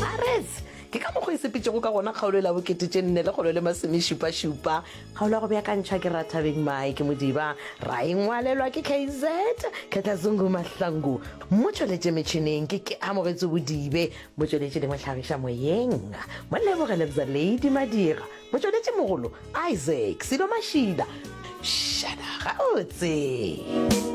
Arets! Ke ka mokgo e sepetšego ka gona kgaolo e la bokete tše nne lekgolo le masomešupašupa. Kgaolo ya go beakantšhwa ke Ra Thabeng Maake Modiba, ra e ngwalelwa ke KZ Khetlazungu Mahlangu. Mo tšweletše metšhineng ke Keamogetso Bodibe, mo tšweletše le mo hlagiša moyeng mo Leboge Lebza Lady Madira, mo tšweletše mogolo Isaac Silo Mashila. Pshada gabotse!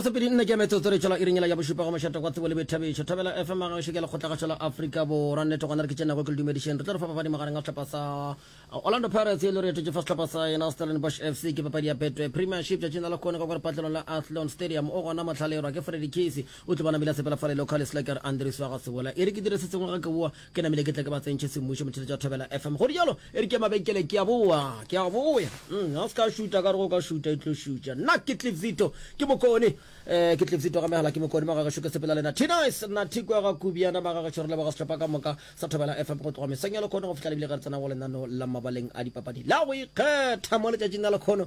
masepedi nne ke metsotso re tšwela iringela ya bošupa go mošata kwa tsebo le boithabišo thabela fm ga šeke lekgotla gašo la afrika borwa nnete gona re ke tšenago ke le dumedišeng re tlo re fa papadi magareng a sehlopha sa uh, orlando pirates e le re etetše fa sehlopha sa yena stellenbosch fc ke papadi ya betway premiership tšatšing la lekgone ka kwa lepatlelong la athlon stadium o gona motlhalerwa ke freddy case o tlo bona mila sepela fa le local slacker andres wa ga sebola e re ke dire se sengwe ga ke boa ke namile ke tle ke ba tsentšhe semmušo motheletša wa thobela fm go dijalo e re ke mabenkele ke a boa ke a boya mm, ga o se ka šuta ka re go ka šuta e tlo šutša nna ke tlipzito ke mokone um ke tlipzito ga megala ke mokone magagešo ke sepela lena tinice nna thikwa ga kubiana magagešo re leboga setlhopa ka moka sa thobela fm go tloga meseng ya lekgono go fihla lebile ge re tsena go lenano la mabaleng a dipapadi la go ikgetha mo letšatšing la lekgono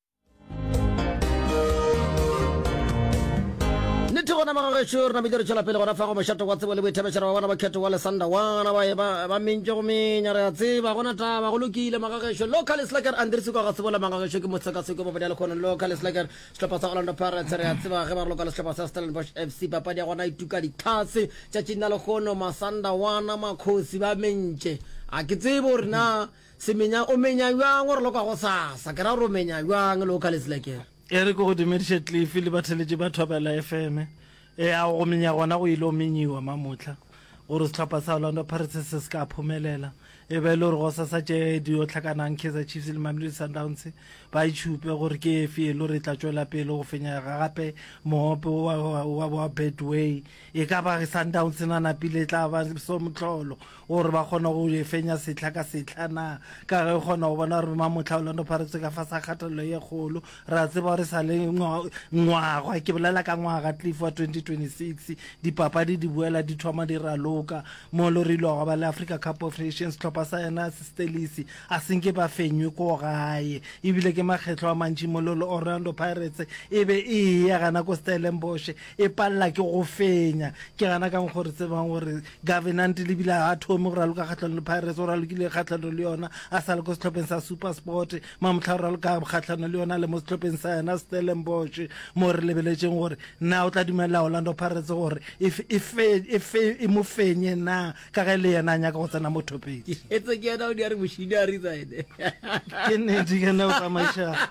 nnete gona magagešo re namile re tšwela pele gona fa go mošato wa tsebo le boithabešera wa bona ba kgetho wa lesanda wana ba ba mentše go menya re a tseba gona taba go lokile magagešo local slacker andrese kwa ga tsebola magagešo ke mosekaseko ba bodiale kgono local slacker sehlopha sa orlando pirates re a tseba ge ba re loka le sehlopha sa stellenbosch f c papadi ya gona e tuka ditlhase tšatšing la lekgono masanda wana makgosi ba mentše a ke tsebo rena Semenya, O menya bjang gore le kwa gosasa? Ke ra gore o menya bjang le o ka letsela ke re? Eric, Go dumediše Cliff le batheletši ba Thwaba LFM. Ea go menya gona go ile go menyiwa mamohla gore sehlopha sa Orlando Pirates se se ka phumelela. E be e le gore gosasa tše di yo hlakanang Kaizer Chiefs le Mamelodi Sundowns ba itšhupe gore ke efe e le gore e tla tšwela pele go fenya gape mohope wa Betway. e ka ba sundowns e na napile e tla ba somotlholo gore ba kgona go e fenya setlha ka setlha na ka ge e kgona go bona gore mamotlha orlando pirates ka fa sa kgathelelo ye kgolo re a tseba gore sa le ngwaga ke bolela ka ngwaga cliff wa 2026 dipapadi di boela di thoma di raloka mo lo re ilwa ba le africa cup of nations tlhopha sa yena stelisi a senke ba fenywe ko gae ebile ke makgetlho a mantši mo lo orlando pirates e be e ya gana ko stellenboshe e palela ke go fenya ke gana kang gore tsebang gore governant le bile a thome gore a loka kgatlhano le pirates gore a lokile kgatlhano le yona a sa le ko setlhopheng sa super sport mamotlha gore a loka kgatlhano le yona le mo setlhopheng sa yona stellenbosch mo re lebeletseng gore na o tla dumelela orlando pirates gore e, e, e, e mo fenye na ka ge le yena a nyaka go tsena mo thopeng ke nedi kana o tsamaiša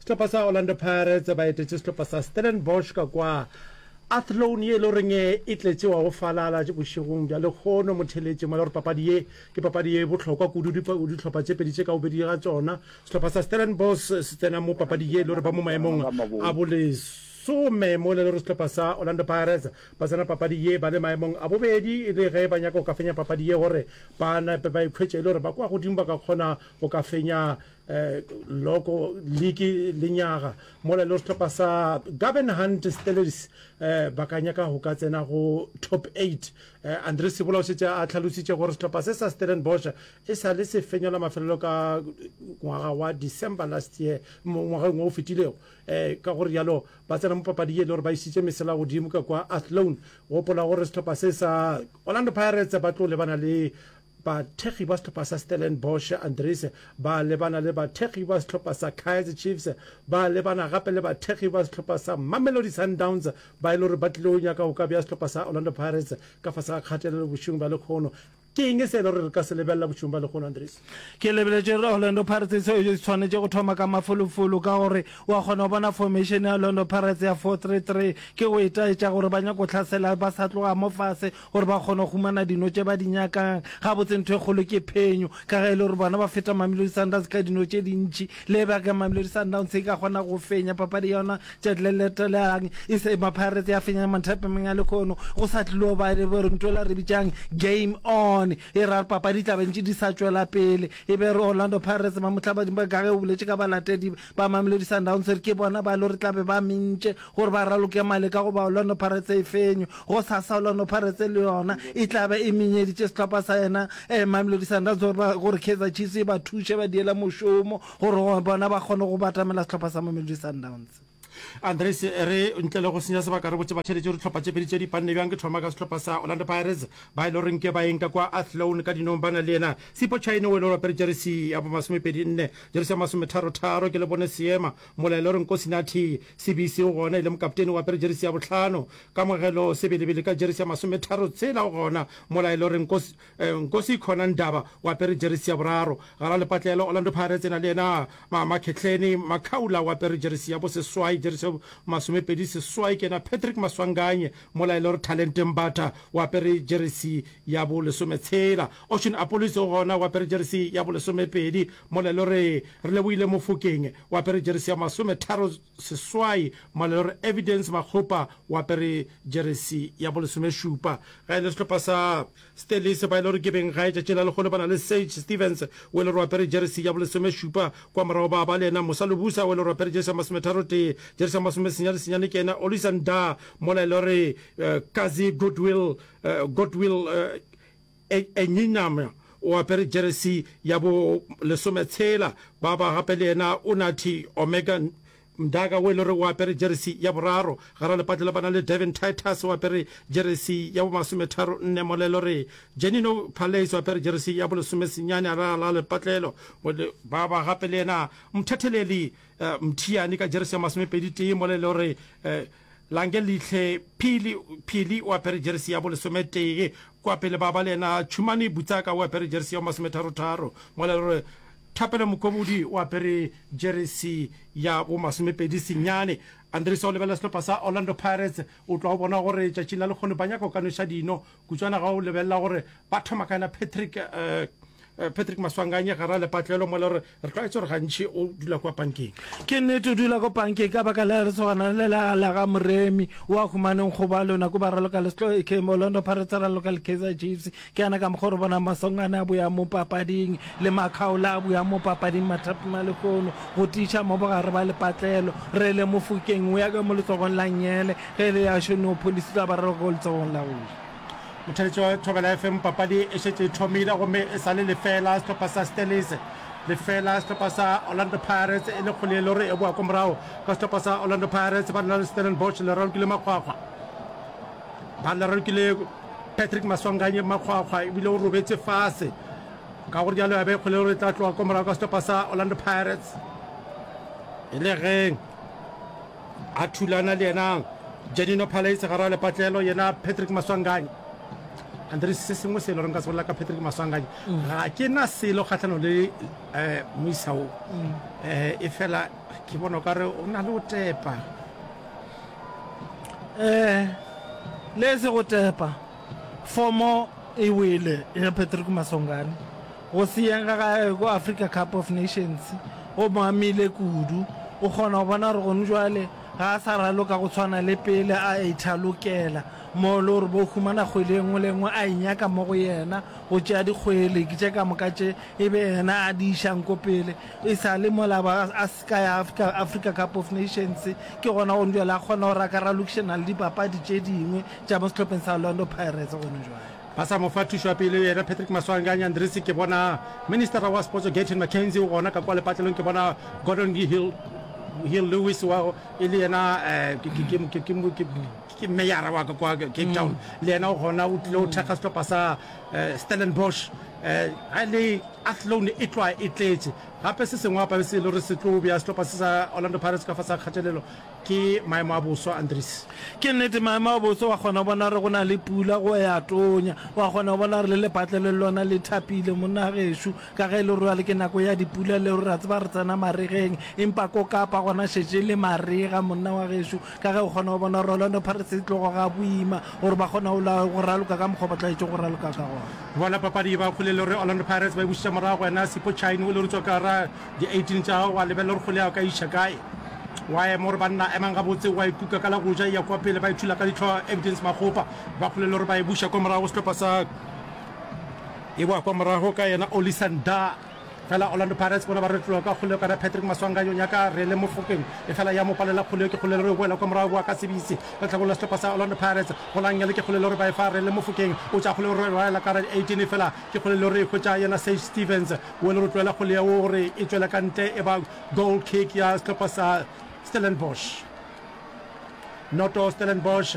Sehlopha sa Orlando Pirates ba etetše sehlopha sa Stellenbosch ka kwa Athlone ye e le goreng e tletše wa go falala bošegong bja lekgono mo theletšeng mo le gore papadi ye ke papadi ye bohlokwa kudu dihlopha tše pedi tše ka bobedi ga tsona sehlopha sa Stellenbosch se tsena mo papadi ye e le gore ba mo maemong a boleso lesome mo le gore sehlopha sa orlando pirates ba tsena papadi ye ba le maemong a bobedi e le ge ba nyaka go ka fenya papadi ye gore ba nape ba ikhwetše e le gore ba kwa godimo ba ka kgona go ka fenya Eh, loko liki lenyaga mola lo setlhopha sa gaben hunt stelers eh, ba ka nyaka go ka tsena go top 8 eh, andre sebola o setse a tlhalositse gore setlhopha se sa stellenbosch e sa le se fenyola mafelelo ka ngwaga wa december last year ngwageng o o fetilego um ka gore jalo ba tsena mo papadi ye le gore ba isitse mesela godimo ka kwa athlone gopola gore setlhopha se sa orlando pirates ba tlo lebana le Bathekgi ba sehlopha sa Stellenbosch Andries ba lebana le bathekgi ba sehlopha sa Kaizer Chiefs, ba lebana gape le bathekgi ba sehlopha sa Mamelodi Sundowns ba e le gore ba tlile go nyaka go ka bea sehlopha sa Orlando Pirates ka fase ga kgatelelo bošegong bja lekgono. Ke eng se e le gore re ka se lebelela bošegong bja lekgono, Andries? Ke lebeletše gore Orlando Pirates e swanetše go thoma ka mafolofolo ka gore wa kgona go bona formation ya Orlando Pirates ya four three three ke go itaetša gore ba nyaka go hlasela ba sa tloga mo fase, Gore ba kgone go humana dino tše ba di nyakang. Gabotse ntho e kgolo ke phenyo, ka ge e le gore bona ba feta Mamelodi Sundowns ka dino tše dintši. Le e bjang Mamelodi Sundowns e ka kgona go fenya papadi ya yona tšatši le letelang e se ema Pirates ya fenya mathapameng a lehono, go sa tlilo ba le bo ntho e la re bitšang game on. E ra papadi di tla be ntše di sa tšwela pele. E be re Orlando Pirates ba mohlabading ba ka ge o boletše ka balatedi Ba Mamelodi Sundowns ke bona ba lo re tla be ba mentše gore ba raloke male ka go ba Orlando Pirates e fenywe. Go sasa Orlando Pirates le yona e tla be e menyeditše sehlopha sa yena Mamelodi Sundowns gore ba gore Kaizer Chiefs e ba thuše ba diela mošomo gore bona ba kgone go batamela sehlopha sa Mamelodi Sundowns. Andries e re ntle le go senya sebaka re botše batšheletše gore dihlopha tše pedi tše di panne bjang. Ke thoma ka sehlopha sa Orlando Pirates ba e le goreng ke baeng ka kwa Athlone ka dinong ba na le yena Sipho Chaine o e le gore o apere jeresi ya bo masomepedi nne. Jersey ya masometharo-tharo, ke le bone seema, molaelo re Nkosi Nathi, Sibisi o gona e le mokapteni o apere jersey ya bohlano, Kamogelo Sebelebele ka jersey ya masometharo-tshela o gona, molaelo re Nkosi, eh, Nkosi Khona Ndaba o apere jersey ya boraro, Gara Lepatlelo Orlando Pirates e na le yena, Ma, Makhetleni Makhaula o apere jersey ya boseswai, jersey ya masomepedi seswai ke yena Patrick Maswanganye, molaelo re Talente Mbatha o apere jersey ya bolesometshela. Ocean Apollos o gona o apere jeresi ya bolesomepedi mola e le gore Relebohile Mofokeng o apere jeresi ya masometharo seswai mola e le gore Evidence Makgopa o apere jeresi ya bolesomešupa. Ge e le sehlopha sa Stellies ba e le gore ke beng gae tšatši la lekgolo ba na le Sage Stephens o e le gore o apere jeresi ya bolesomešupa. Kwa morago ba ba le yena Musa Lubusa o e le gore o apere jeresi ya masometharotee. Jeresi ya masomesenya le senyane ke yena Olisa Ndah mola e le gore Kazi Goodwill Godwill e nyenyane o apere jeresi ya bo lesome tshela, ba ba gape le yena o Nathi Omega Mdaka o e le gore o apere jeresi ya boraro. Gare lepatla le ba na le Devin Titus o apere jeresi ya bo masometharo nne mo le e le gore Janino Palace o apere jeresi ya bo lesome senyane a ralala lepatlelo. Ba ba gape le yena mothetheleli Mthiane ka jeresi ya masomepedi tee mo le e le gore Lange lihle Phili Phili o apere jeresi ya bolesometee Kwa pele baba le yena Tšhumane Butsaka o apere jeresi ya bomasometharo-tharo Ngwalelo re Thapelo Mokobodi o apere jeresi ya bomasomepedi senyane Andries o lebelela sehlopha sa Orlando Pirates O tlwa o bona gore tšatšing la lekgono ba nyaka go ka nweša dino Kutswana ga o lebelela gore ba thoma kae na Patrick eh, Eh, patrick maswanganye gara lepatlelo mo le gore re tlwaetse gore gantšhi o dula kwa pankeng ke nnete o dula ko pankeng ka baka le re tshwana le la ga moremi o a humaneng go ba lona ko ba raloka le setlo e kemo londo paretse raloka le kaizer chiefs ke yana ka mokgwa re bona masongane a boya mo papading le makgaola a boya mo papading mathapi malekono go tiša mo bogare ba lepatlelo re le mofokeng o ya ka mo letsogong la nyele Pele ya šono pholisi tla bararo go letsogong la go ja. Mothetšo Thobela FM Papadi e šetše e thomile gomme e sa le lefeela sehlopha sa Stellies lefeela sehlopha sa Orlando Pirates e le kgole e le gore e boa ko morago ka sehlopha sa Orlando Pirates ba lona le Stellenbosch le ralokile makgwakgwa ba le ralokile Patrick Maswanganye makgwakgwa ebile o robetse fase ka gore jalo ya be kgole gore e tla tloga ko morago ka sehlopha sa Orlando Pirates e le geng A thulana le yena Janino Palaise gare a lepatlelo, yena Patrick Maswanganyi. Andries, se sengwe se e loreng ka se bolela ka Patrick Maswanganyi, mm. ga ke na selo kgatlhano le eh, moisa o mm. eh, e fela ke bona o ka re o na le o tepa eh le se go tepa fomo e wele ya Patrick Maswanganyi Go senyega ga gagwe go Africa Cup of Nations go mo amile kudu. O kgona go bona gore gone bjale ga a sa raloka go tshwana le pele, a ithalokela mo e le gore bo humana kgwele e nngwe le e nngwe a e nyaka mo go yena, go tšea dikgwele tše ka moka tše e be yena a di išang ko pele. E sa le mola ba a se ka ya Africa Cup of Nations, ke gona gone bjale a kgona gore a ka ralokišana le dipapadi tše dingwe tša mo sehlopheng sa Orlando Pirates gone bjale. Ba sa mo fa thušo ya pele yena Patrick Maswange a nyandrisi ke bona ministera wa spotso Gayton McKenzie o gona ka kwa lepatlelong ke bona Gordon Hill Hill Lewis wa e le yena ke meyara wa ka kwa Cape Town le yena o gona o tlile o thekga setlopha sa Stellenbosch ga le Athlone e tloa e tletše gape se sengwe gape se e le gore se tlo bja setlopha se sa Orlando Pirates ka fa sa kgatelelo Ke maemo a boso, Andries. Ke nnete, maemo a boso. Wa kgona go bona gore go na le pula, go ya tonya. Wa kgona go bona gore le lepatle le lona le thapile, monna gešo, ka ge e le gore bjale ke nako ya dipula le gore re a tseba re tsena maregeng. Empa ko Kapa gona šetše e le marega, monna wa gešo, ka ge o kgona go bona gore Orlando Pirates e tlogo ga boima gore ba kgona go raloka ka mokgwa o ba tlwaetše go raloka ka gona. Bona papadi e ba kgole le gore Orlando Pirates ba e bušetša morago, wena Sipho Chaine o le gore tswa ka ra Di 18 tša gago, wa lebelela gore kgole ya ka e iša kae. Wa ema gore banna emang gabotse, wa e kuka ka la go ja e ya kwa pele, ba e thula ka ditlhoa, Evidence Makgopa. Ba kgolelwa gore ba e buša kwa morago go sehlopha sa e boa kwa morago ka yena Olisa Ndah. Fela Orlando Pirates bona ba retloa ka kgole ka ra Patrick Maswanga yo nyaka re le mofokeng efela ya mo palela kgole yo ke kgolelwa gore e boela kwa morago boa ka sebisi ka tlhakong la sehlopha sa Orlando Pirates. Golang yale ke kgolelwa gore ba e fa re le mofokeng o tša kgole gore e boela ka ra di 18 efela ke kgolelwa gore e hwetša yena Sage Stephens. wo e le go tloela kgole ya wo gore e tšwela ka ntle e ba goal kick ya sehlopha sa Stellenbosch noto Stellenbosch